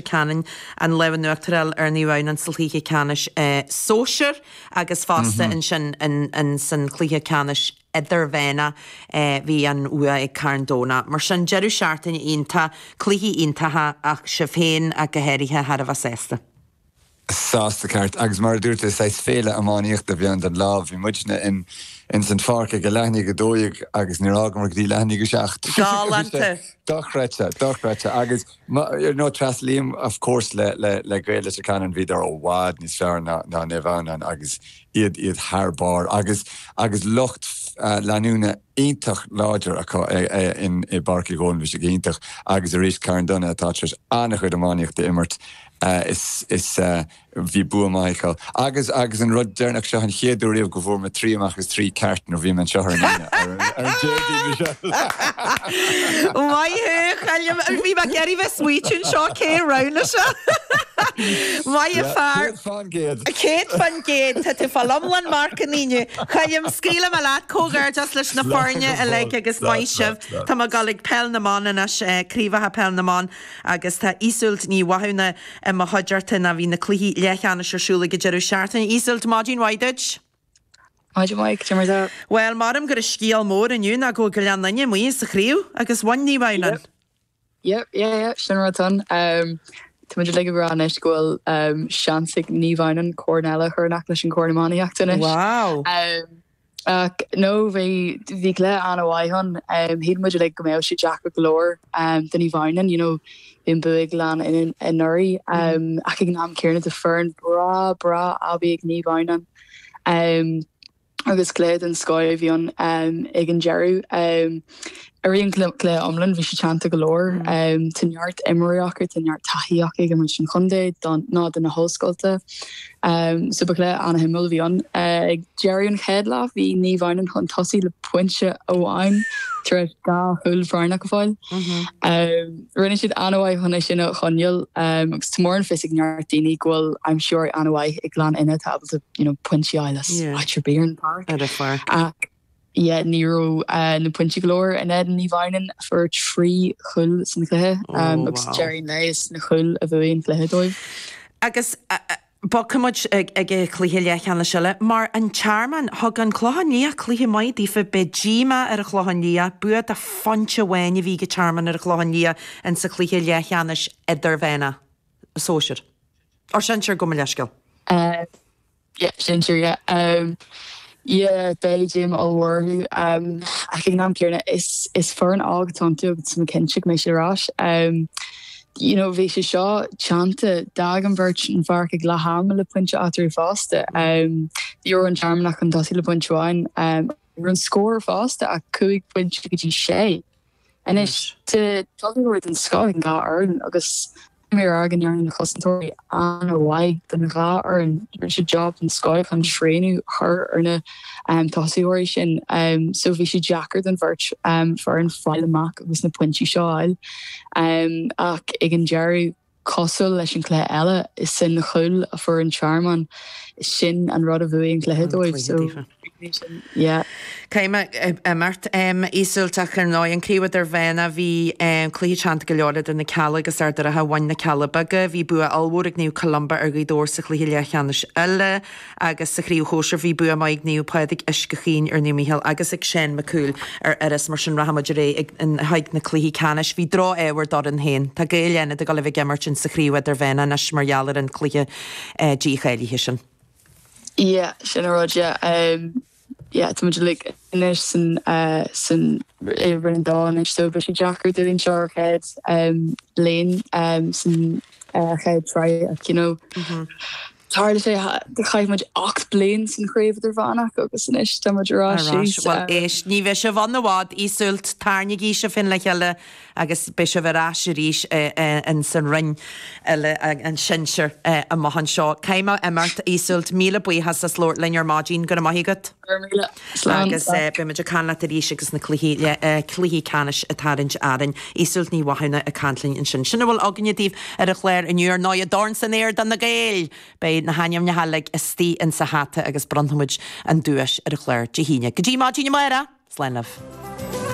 Ceanainn, an lámh in uachtar a fháil ar Naomh Adhamhnáin insa chluiche ceannais sóisear agus fosta ansin insan chluiche ceannais idirmheánach bhí an bhua ag Carn Domhnach. Mar sin, deireadh seachtaine iontach, cluichí iontacha ach sibh féin ach go háirithe thar a bheith sásta. sásta ceart agus mar a dúirt tú saghas féile iománaíochta a bhí ann don lá. Bhí muidne in in san pháirc ag a leath i ndiaidh a dó dhéag agus níor fhágamar go dtí leath i ndiaidh a seacht. Galánta! Dochreidte, dochreidte agus ma you know tréaslaím of course le le le Gaeil Leitir Ceanainn bhíodar i bhfad níos fearr ná ná Naomh Adhamhnáin agus iad iad thar barr agus agus lucht eh leanúna iontach láidir acu eh eh in i bPáirc Uí Dhónaill bhí siad iontach agus arís Carn Domhnach atá tar éis an-chuid iománaíochta a imirt Is, is, bhí bua maith acu. Agus, agus an rud deireanach, seo an chéad uair riamh go bhfuair mé trí amach as trí ceart nuair a bhí mé anseo ar an Aoine, ar an, ar an Déardaoin bhí sé. Maith thú, Colm, bhí mé ag iarraidh bheith ag smaoitiú anseo cé a roghnaigh seo. Maith an fear. Céad fán gcéad. Céad fán gcéad, tá tú ag fáil iomlán marcanna inniu. Colm, scaoilfidh mé leat, comhghairdeas leis na foirne uilig agus maith sibh. Tá mé ag gabháil ag Peil na mBan anois, Craobhacha Peil na mBan. Agus tá Iseult Ní Mhathúna i mo chuideachta, bhí na cluichí leathcheannais ar siúl ag an deireadh seachtaine. Iseult, maidin mhaith duit. Maidin mhaith, cad é mar atá tú. Bhuel, measaim gurb é an scéal mór inniu ná go bhfuil Gleann Fhinne amuigh as an chraobh agus bhain Naomh Adhamhnáin. Yep, yep, yep, yep, sin an rud atá ann. Tá muid uilig ag rá anois go bhfuil seans ag Naomh Adhamhnáin corn eile a chur in aice leis an gcorn iománaíochta anois. Wow! Ach nó bhí bhí cluiche an-mhaith ann. Shíl muid uilig go mbeadh sé deacair go leor do Naomh Adhamhnáin, you know, bhí an bua ag Gleann anuraidh. Ach ag an am céanna tá foireann breá, breá aibí ag Naomh Adhamhnáin agus cluiche den scoth a bhí ann ag an deireadh. Ar an gcluiche iomlán, bhí sé teannta go leor. Tá neart imreoirí acu, tá neart taithí acu ag imirt don chontae nó do na hollscoilta. So ba chluiche an-shuimiúil a bhí ann. Ag deireadh an chéad leath, bhí Naomh Adhamhnáin chun tosaigh le pointe amháin tar éis dhá chúl foirneach a fháil. Rinne siad an-mhaith chun é sin a choinneáil agus tá, mar atá a fhios ag neart daoine go bhfuil aimsitheoirí an-mhaith ag Gleann Fhinne atá ábalta pointí a fháil as áit ar bith ar an bpáirc. Yeah, ní raibh na pointí go leor in éadan Naomh Adhamhnáin, a fuair trí chúl san chluiche, agus deireadh an lae is na cúil a bhuaigh an cluiche dóibh. Agus bogfaidh muid ag an chluiche leathcheannais eile. Mar an Tearmann, thug an Clochán Liath cluiche maith daofa, beidh díomá ar an Chlochán Liath, bua de phointe amháin a bhí ag an Tearmann ar an Chlochán Liath insa chluiche leathcheannais idirmheánach, sóisear, er sinsear, gabh mo leithscéal. Yeah, sin sure yeah. Yeah, beidh díomá mhór orthu. Ach ag an am céanna, is is foireann óg atá iontu agus tá mé cinnte go mbeidh siad ar ais. You know, bhí sé seo teannta, d'fhág an bheirt an pháirc ag leath ama le pointe eatarthu fosta. Ní raibh an Tearmann ach chun tosaigh le pointe amháin. Raibh an scór fosta ach cúig phointe go dtí sé. Anois, tá tosaithe den scoth ag an dhá fhoireann agus níl mé ag rá go ndearna na cosantóirí an-mhaith don dhá fhoireann. Rinne siad jab den scoth chun srianadh a chur ar na tosaitheoirí sin so bhí sé deacair don bheirt foireann fáil amach agus na pointí seo a fháil. Ach ag an deireadh, Cosúil leis an chluiche eile, is é an cúl a fuair an Tearmann. Sin an rud a bhuaigh an cluiche dóibh so b'in sin, yeah. Caithfidh mé imeacht, a Iosóilt, ach ar ndóigh an chraobh idirmheánach. Bhí an cluiche teannta go leor idir na Cealla agus Ard an Rátha. Bhain na Cealla Beaga. Bhí bua ollmhór ag Naomh Columba ar Ghaoth Dobhair sa chluiche leathcheannais eile. agus sa chraobh shóisir bhí bua maith ag Naomh Pádraig Uisce Chaoin ar Naomh Micheál agus ag Seán Mac Cumhaill ar Iorras, mar sin rachaimid ar aghaidh le haghaidh na cluichí ceannais. Bhí drochádh ar d'fhoireann féin. Tá Gaeil Fhánada ag gabháil a bheith ag imirt ins sa chraobh idirmheánach anois mar gheall ar an cluiche dícháilithe sin. Yeah, sin a rud, yeah. yeah tá muid uilig anois san san Roinn a Dó anois so beidh sé deacair dúinn seo ár chéad um bliain um san uh, chéad triail ach you know mm -hmm. Tarlaíonn sé, chaith muid 8 bliain san chraobh idirmheánach agus anois tá muid ar ais. Well éist, ní bheidh sibh ann i bhfad, a Iosóilt, tarraingeoidh sibh féin le chéile Agus beidh sibh ar ais arís ins an roinn eile, an sinsear, amuigh anseo. Caithfidh mé imeacht, a Iosóilt. Míle buíochas as labhairt linn ar maidin. Go raibh maith agat. Go raibh míle. Slán. Agus beidh muid ag caint leat arís agus na cluichí, cluichí ceannais ag tarraingt orainn. Iosóilt Ní Mhathúna ag caint linn ansin. Sin a bhfuil againne daoibh ar an chlár inniu. Ar ndóighe, dorn san aer do na Gaeil! Beidh na hainmneacha uilig istigh insa hata agus bronnfaimid an duais ar an chlár Dé hAoine. Go dtí maidin amáireach, slán libh.